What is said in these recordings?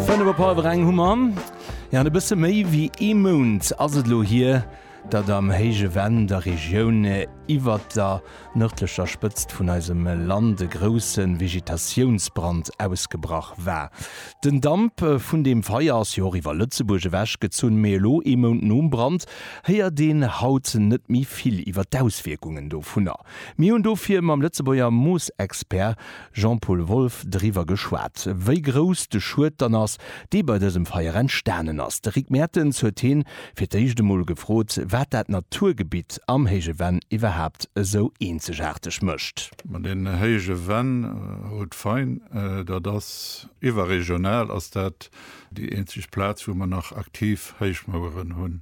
Fënnef op hallwer eng hu mer. Ja e bësse méi wéi ee Mount ass et elo hier, datt am héije Venn der Regioun iwwer der nërdlecher Spëtzt vun eisem Land e grousse Vegetatiounsbrand ausgebrach war. Den Damp vun deem Feier ass jo och iwwer Lëtzebuerg ewechgezunn, mee elo, ee Mount nom Brand, héiert een haut net méi vill iwwer d'Auswierkungen dovunner. Mir hunn dofir mam Lëtzebuerger Moosexpert Jean-Paul Wolff, Driwwer geschwat, wéi grouss de Schued dann ass, dee bei dësem Feier entstanen ass. De Rick Mertens huet hie fir d'éischt emol gefrot, wat dat Naturgebitt am Héije Venn iwwerhaapt esou eenzegaarteg mécht. Ma den Héije Venn, Haut-Fain, dat ass iwwerregional ass dat déi eenzeg Plaz, wou mer nach aktiv Héichmaueren hunn.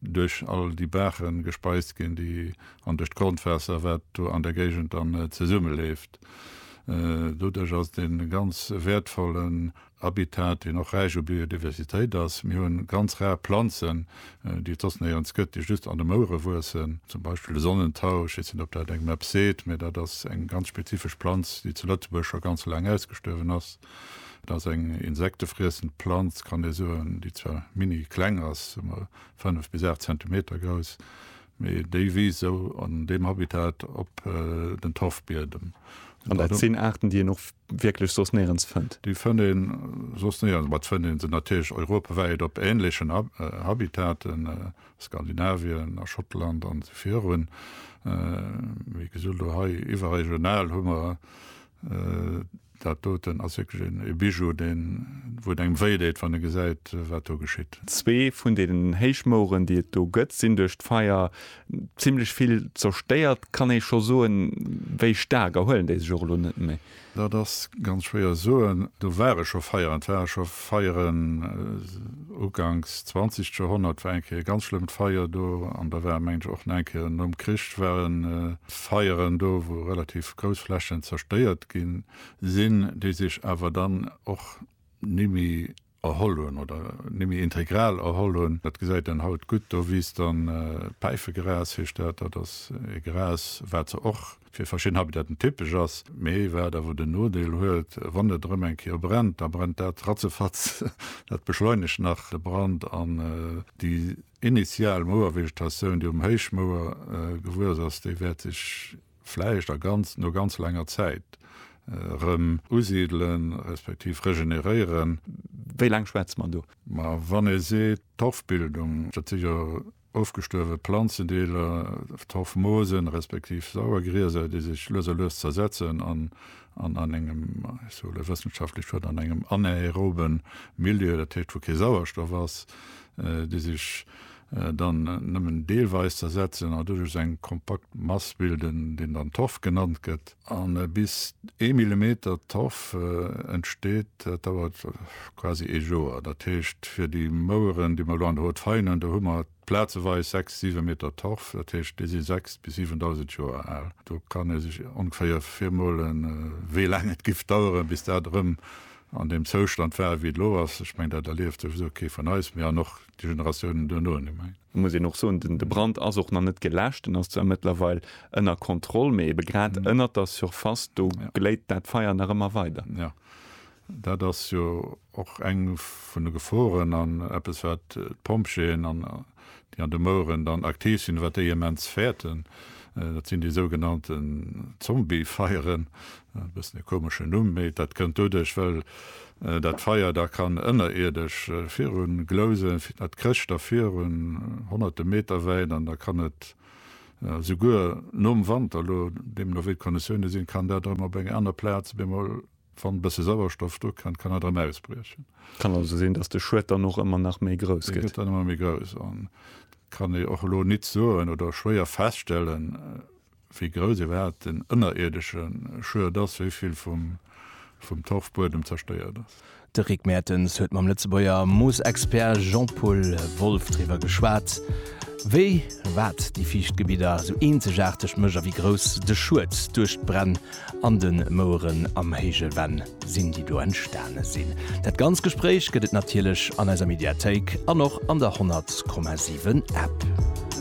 duerch all déi Baachen gespeist ginn, déi an duerch d'Grondwaasser, wat do an der Géigend dann zesummeléft. Doduerch ass et e ganz wäertvollen Habitat, deen och räich u Biodiversitéit ass. Mir hu ganz rar Planzen, déi et soss néierens gëtt, déi just an de Mouere wuessen, zum Beispill de Sonnentau, ech weess net, ob dat engem eppes seet, mä dat ass eng ganz spezifesch Planz, déi zu Lëtzebuerg scho ganz laang ausgestuerwen ass. Et ass eng insektefriessend Planz, kann ee soen, déi zwar mini kleng ass, sou mol 5 bis 8 Zentimeter grouss, mee déi wiisst sou an deem Habitat op den Torfbiedem. An dat sinn Aarten, déi een och wierklech soss néierens fënnt? Déi fënnt ee soss néierens, ma et fënnt ee se natierlech europawäit op änlechen Habitaten, Skandinavien, a Schottland an esou virun. Wéi gesot, elo hei iwwerregional hu mer Dat doten ass wierklech een Bijou, deen, wou et engem wéi deet, wann e gesäit, wat do geschitt. Zwee vun deenen Héichmoueren, déi et do gëtt, sinn duerch d'Feier zimmlech vill zerstéiert. Kann ee scho soen, wéi staark erhuelen déi sech och elo net méi? Dat ass ganz schwéier soen. Do ware scho Feieren. Et ware scho Feieren uganks zwanzegt Joerhonnert, war eng Kéier e ganz schlëmmt Feier do. An da war, mengen ech, och nach eng Kéier nom Krich war en. Feieren do, wou relativ grouss Flächen zerstéiert gi sinn, déi sech awer dann och nimmi erholl hunn oder nimmi integral erholl hunn. Dat gesäit een haut gutt. Do wiisst dann, Päifegras heescht dat, dat ass e Gras, wat se och fir verschidden Habitaten typesch ass, mee wat awer den Nodeel huet, wann et erëm eng Kéier brennt, da brennt dat ratzefatz. Dat beschleunegt nach de Brand an déi initial Mouervegetatioun, déi um Héichmouer gewuess ass, déi wäert sech vläicht a ganz, no ganz laanger Zäit erëm usidelen, respektiv regeneréieren. Wéi laang schwätze mer do? Ma wann ee seet Torfbildung, dat si jo ofgestuerwe Planzendeeler, Torfmoosen, respektiv Sauergrieser, déi sech lues a lues zersetzen an an engem, ech soe lë wëssenschaftlecht Wuert, an engem anaerobe Milieu, dat heescht wou kee Sauerstoff ass, déi sech dann nëmmen deelweis zersetzen a doduerch eng kompakt Mass bilden, deen dann Torf genannt gëtt. A bis ee Millimeter Torf entsteet, dat dauert quasi ee Joer. Dat heescht, fir déi Moueren, déi mer elo an der Haute Faille hunn, do hu mer plazeweis sechs, siwe Meter Torf, dat heescht, déi si 6 bis 7.000 Joer al. Do kann ee sech ongeféier virmolen, wéi laang et géif daueren, bis dat erëm an deem Zoustand war wéi et elo ass, ech mengen dat erlieft souwisou kee vun eis méi an och déi Generatiounen duerno net méi. Elo muss een och soen, den de Brand ass och nach net geläscht, en ass zwar mëttlerweil ënner Kontroll, mee ebe grad ënnert der Surface do gléit dat Feier nach ëmmer weider. Jo, dat ass jo och eng vun de Geforen an eppes wat d'Pompjeeën an déi an de Moueren dann aktiv sinn, wat déi immens fäerten, dat sinn déi sougenannten Zombiefeieren, e bëssen e komeschen Numm, mee dat kënnt doduerch, well dat Feier da kann ënnerierdesch viru glousen, dat krécht da viru honnerte Meter wäit an da kann et esouguer nom Wanter, elo deemno wéi d'Konditioune sinn, kann dat erëm op enger aner Plaz op eemol Wann e bësse Sauerstoff do kënnt, kann et erëm ausbriechen. Et kann also sinn, datt de Schued dann och ëmmer nach méi grouss gëtt. Dee gëtt dann ëmmer méi grouss. An et kann ee och elo nit soen oder schwéier feststellen, wéi grouss iwwerhaapt den ënnerierdesche Schued ass, wéi vill vum Torfbuedem zerstéiert ass. De Rick Mertens huet mam Lëtzebuerger Moosexpert Jean-Paul Wolff driwwer geschwat, wéi wat déi fiicht Gebidder esou eenzegaarteg mécht a wéi grouss de Schued duerch d'Bränn An den Moueren am héije Venn sinn déi do entstane sinn. Dat ganz Gespréich gëtt et natierlech an eiser Mediathéik an och an der 100,7 App.